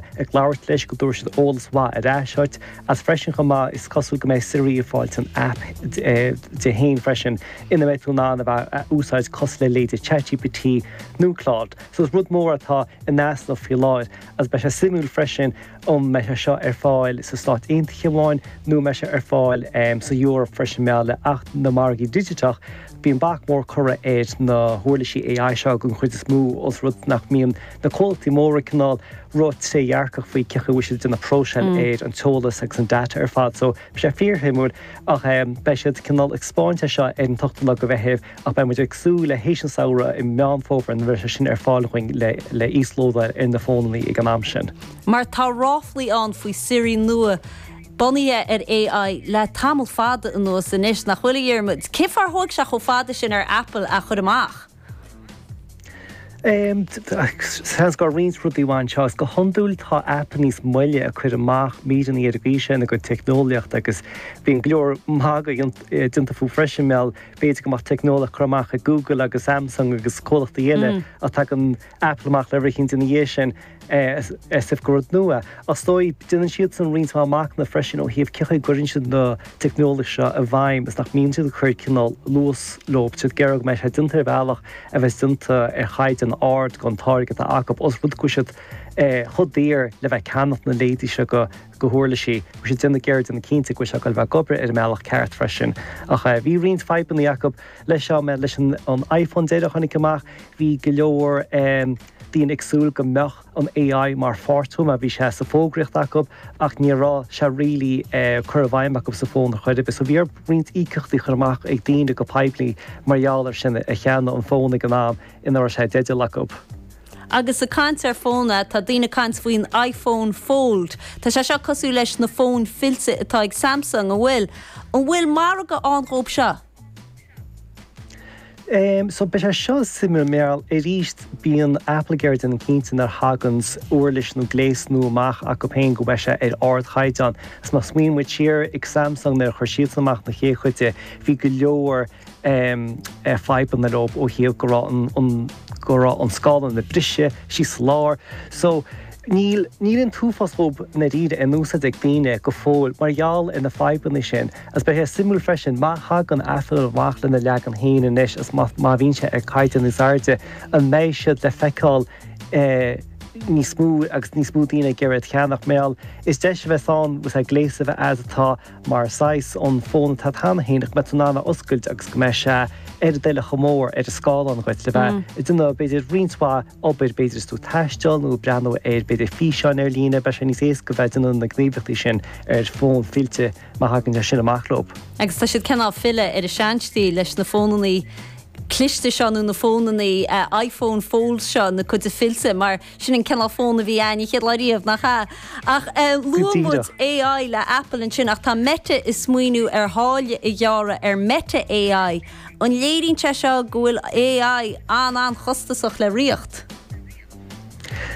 ag labhairt leis go dtabharfaidh siad eolas maith ar ais dhuit, agus freisin chomh maith is cosúil go mbeidh Siri ag fáil a haip di féin freisin ina mbeidh tú in ann a bheith ag úsáid cosúil le leithéidí ChatGPT nó Claude. So is rud mór atá in easnamh faoi láthair agus beidh sé suimiúil freisin an mbeidh sé seo ar fáil sna Stáit Aontaithe amháin nó an mbeidh sé ar fáil san Eoraip freisin mar gheall le hAcht na Margaí Digiteach. Bíonn bac mór curtha ar na huirlisí AI seo don chuid is mó os rud nach mbíonn na comhlachtaí móra cineál róthrédhearcach faoi cén chaoi a bhfuil siad ag déanamh próiseáil ar an t-eolas agus an data ar fad. So, bhí sé fíorshuimiúil ach beidh siad cineál ag 'speáint seo ar an t-ochtú lá de Mheitheamh ach beidh muid ag súil leis tar éis an tsamhraidh i Meán Fómhair nuair a bheidh sé sin ar fáil dhúinn le híoslódáil ar na fónannaí ag an am sin. Mar tá ráflaí ann faoi Siri nua bunaithe ar AI le tamall fada anuas anois, nach bhfuil, a Dhiarmuid? Cé fáth ar thóg sé chomh fada sin ar Apple é a chur amach? Seans go raibh roinnt rudaí ann anseo. Is go hiondúil tá Apple níos moille ag cur amach míreanna ar an gcaoi sin a gcuid teicneolaíochta agus bíonn go leor magadh déanta fúthu freisin, mar gheall b'fhéidir go mbeadh teicneolaíocht curtha amach ag Google agus Samsung agus comhlachtaí eile ach tagann Apple amach lena gcinn ina dhiaidh sin. as if gur rud nua. Is dóigh, déanann siadsan roinnt mhaith machnaimh freisin ó thaobh cén chaoi a gcuireann siad an teicneolaíocht seo i bhfeidhm is nach mbíonn siad ag cur cineál luas leo, tá siad ag iarraidh go mbeidh sé déanta ar bhealach a bheas déanta ar chaighdeán ard don táirge atá acu, os rud go bhfuil siad chomh daor le bheith ag ceannacht na leithéidí seo de huirlisí. Tá siad déanamh ag iarraidh déanamh cinnte go bhfuil sé ag dul a bheith ag obair ar an mbealach ceart freisin. Ach bhí roinnt fadhbanna acu leis seo, leis an iPhone deiridh a tháinig amach, bhí go leor. Daoine ag súil go mbeadh an AI mar pháirt dhó mar, bhí sé sa bhfógraíocht acu ach ní raibh sé really curtha i bhfeidhm acu sa bhfón ar chor ar bith. So bhí orthu roinnt íocaíochtaí a chur amach ag daoine go poiblí mar gheall ar sin, a cheannaigh an fón ag an am a raibh sé i dteideal acu. Agus ag caint ar fóna, tá daoine ag caint faoin iPhone Fold. Tá sé seo cosúil leis na fóin fillte atá ag Samsung, an bhfuil? An bhfuil margadh ann dhóibh seo? Em, so beidh sé seo suimiúil mar, arís, bíonn Apple ag iarraidh déanamh cinnte nuair a thagann uirlis nó gléas nua amach acu féin go mbeidh sé ar ardchaighdeán. So má smaoiníonn muid siar, ag Samsung, nuair a chuir siadsan amach na chéad chuid de, bhí go leor, em, eh, fadhbanna leo ó thaobh go raibh an, an, go raibh an scáileán ag briseadh síos sa lár. So, níl, níl an t-uafás dhíobh, i ndáiríre, in úsáid ag daoine go fóill mar gheall ar na fadhbanna sin. Is beidh sé suimiúil freisin, má thagann Apple amach lena leagan féin anois is má bhíonn sé ar caighdeán níos airde, an mbeidh siad le feiceáil níos mó agus níos mó daoine ag iarraidh iad a cheannach. Mar gheall, is deis a bheas ann gléas a bheith agat atá mar size an fón atá agat cheana féin ach go mbeidh tú in ann a oscailt agus go mbeidh sé a dhá uair chomh mór ar an scáileán agat le bheith ag déanamh b'fhéidir roinnt mhaith obair, b'fhéidir is tú ag taisteal nó ag breathnú ar b'fhéidir físeáin ar líne, beidh sé níos éasca bheith ag déanamh na ngníomhaíochtaí sin ar fón fillte. má thagann sé sin amach leo. Agus tá siad cineál ag filleadh ar an seanstíl leis na fónannaí cliste seo, nó na fónannaí iPhone Fold seo, na cinn fillte, mar sin an cineál fón a bhí ann an chéad lá riamh, nach ea? Ach Go luann muid díreach. AI le Apple ansin, ach tá Meta ag smaoineamh ar tháille a ghearradh ar Meta AI. An léiríonn sé seo go bhfuil AI an-an-chostasach le rith?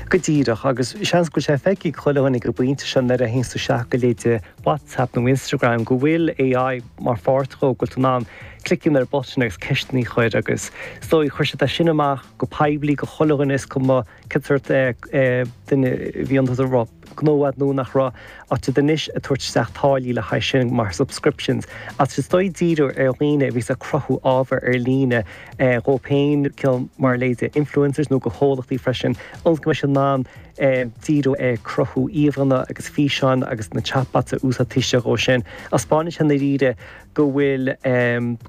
Go díreach, agus seans go bhfuil sé feicthe ag chuile dhuine ag an bpointe seo nuair a théanns tú isteach go leithéidí WhatsApp nó Instagram go bhfuil AI mar pháirt dhó, go bhfuil tú in ann cliceáil ar button agus ceisteanna a chur agus is dóigh chuir siad é sin amach go poiblí do chuile dhuine is cuma cén sórt duine a bhí iontu. gnó a'd nó nach raibh ach tá siad anois ag tabhairt isteach táillí le haghaidh sin mar subscriptions, ach is dóigh díriú ar dhaoine a bhí ag cruthú ábhair ar líne dhóibh féin, cineál mar leithéidí influencers, nó go comhlachtaí freisin, ionas go mbeidh siad in ann díriú ar chruthú íomhánna agus físeáin agus na chatbots a úsáid taobh istigh dhó sin. Taispeánann sé i ndáiríre. go bhfuil,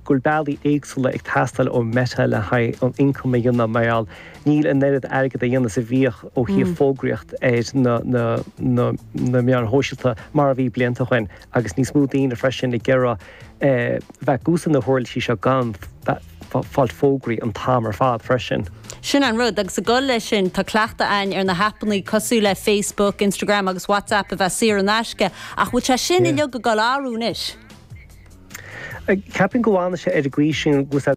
go bhfuil bealaí éagsúla ag teastáil ó Meta le haghaidh an ioncam a dhéanamh mar gheall níl an oiread airgid á dhéanamh is a bhíodh ó thaobh fógraíocht ar na meáin shóisialta mar a bhí blianta ó shin agus níos mó daoine freisin ag iarraidh bheith ag úsáid na huirlisí seo gan fáil fógraí an t-am ar fad freisin. Sin an rud, agus ag dul leis sin tá cleachtadh a'ainn ar na haipeannaí cosúil le Facebook, Instagram agus WhatsApp a bheith saor in aisce ach bhfuil sé sin uiliug ag dul ag athrú anois? Cheapfainn go bhfanfaidh sé ar an gcaoi sin agus.